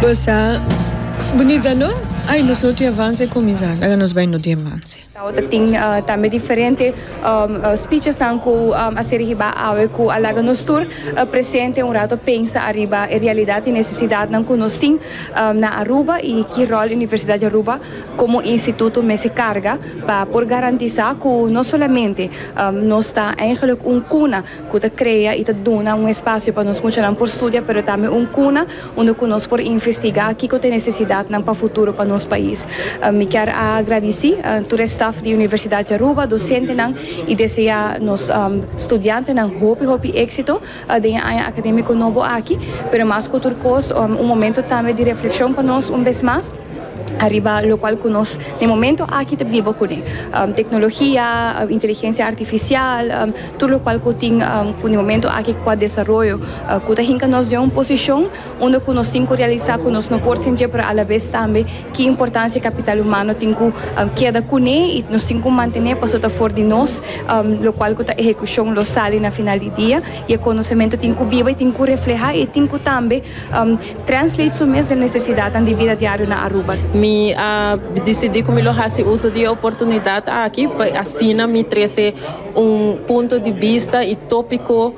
Bo sa bunita no? Ai nos no tin avans e kuminsá laga nos bai no tin avans. Awe ta tin tambe diferente spichesnan ku a ser hibá awe ku a laga nos tur presente un rato pensa ariba e realidat i nesesidatnan ku nos tin na Aruba i ki ròl Universidad di Aruba komo instituto mester karga pa por garantisá ku no solamente nos ta eigenlik un kuna cu ta crea y ta duna un espacio pa nos muchanan por studia pero tambe un cuna unda cu nos por investiga kico ta e necesidadnan pa futuro pa nos pais. Mi kier a gradici tur e staf di Universidad di Aruba, docentenan y desea nos studiantenan hopi hopi exito den e aña academico nobo aki, pero mas cu tur cos un momento tambe di reflexion pa nos un bes mas. Ariba locual cu nos na e momento aki ta biba cu ne. Tecnologia, inteligencia artificial, tur locual cu tin cu na e momento aki cu a desaroyo, cu ta hinca nos den un posicion unda cu nos tin cu realisa cu nos no por sintié pero alabes tambe ki importancia e capital humano tin cu keda cu ne y nos tin cu mantené pasobra ta for di nos locual cu ta ehecucion lo sali na final di dia y e conocemento tin cu biba y tin cu refleha y tin cu tambe Translate su mes den necesidadnan di bida diario na Aruba. Mi a dicidi cu mi lo haci uso di e oportunidad aki pa asina mi trece un punto di bista y topico,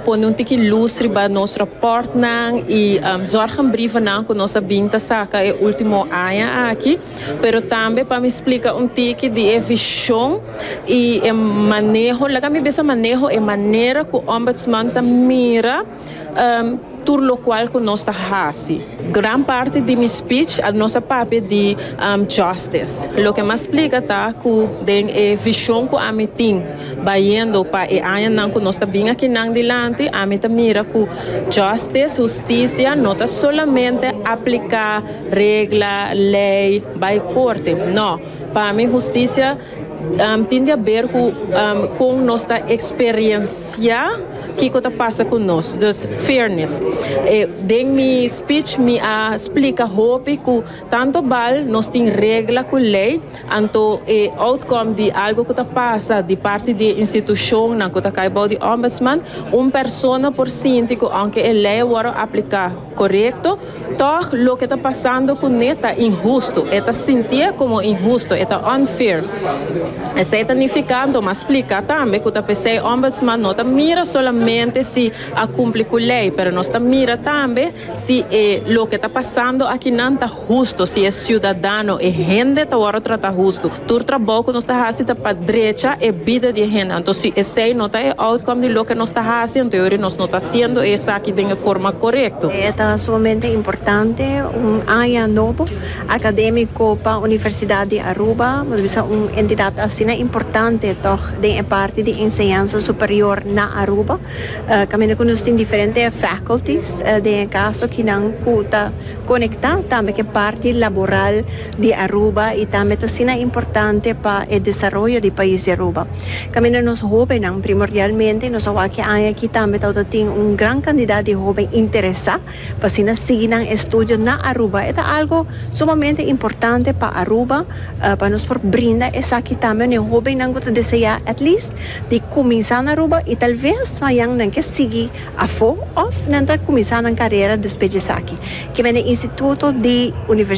pone un tiki luz riba nos raportnan y zorgenbrievennan cu nos a bin ta saca e ultimo aña aki, pero tambe pa mi splica un tiki di e vision y e maneho, laga mi bisa maneho, e manera cu Ombudsman ta mira. tur lokual ku nos ta hasi. Gran parti di mi spich nos a papia di jòstis. Loke m'ha splika ta ku den e vishon ku ami tin bayendo pa e añanan ku nos ta bin akinan dilanti, ami ta mira ku jòstis, hustisia, no ta solamente apliká regla, lei, bai korte. No, pa mi hustisia. Tin di haber cu con nos ta experiencia kico ta pasa cu nos. Dus, fairness. Den mi speech mi a splica hopi cu tanto bal nos tin regla cu ley, anto e outcome di algo cu ta pasa di parti di e institucionnan cu ta cay bao di Ombudsman, un persona por sinti cu aunke e ley a worde aplica, Korekto, tòg loke ta pasando ku ne ta inhustu. E ta sintié komo inhustu, e ta unfair. Esei ta nifikando, mas splika tambe ku ta p'esei Ombudsman no ta mira solamente si a kumpli ku lei, pero nos ta mira tambe si e loke ta pasando akinan ta. Hustu, si e siudadano, e hende ta wòrdu trata hustu. Tur trabou ku nos ta hasi ta pa drecha e bida di e hende. Anto si esei no ta e outcome di loke nos ta hasi, anto yo ori nos no ta hasiendo esaki den e forma korekto. E ta sumamente importante un aña nobo akadémiko pa Universidat di Aruba. Bo ta bisa un entidat asina importante tòg den e parti di enseñansa superior na Aruba, kaminda ku nos tin diferente faculties den e kaso kinan ku ta. Konektá tambe ku e parti laboral di Aruba i tambe ta asina importante pa e desaroyo di pais di Aruba. Kaminda nos hóbennan primordialmente, i nos a wak e aña aki tambe tabata tin un gran kandidat di hóben interesá pa asina sigui nan estudio na Aruba. E ta algu sumamente importante pa Aruba pa nos por brinda esaki tambe na e hóbennan ku ta deseá at least di kuminsá na Aruba i talves mañan nan ke sigui Afo òf nan ta kuminsá nan karera despues di esaki? Kimen e instituto di universi.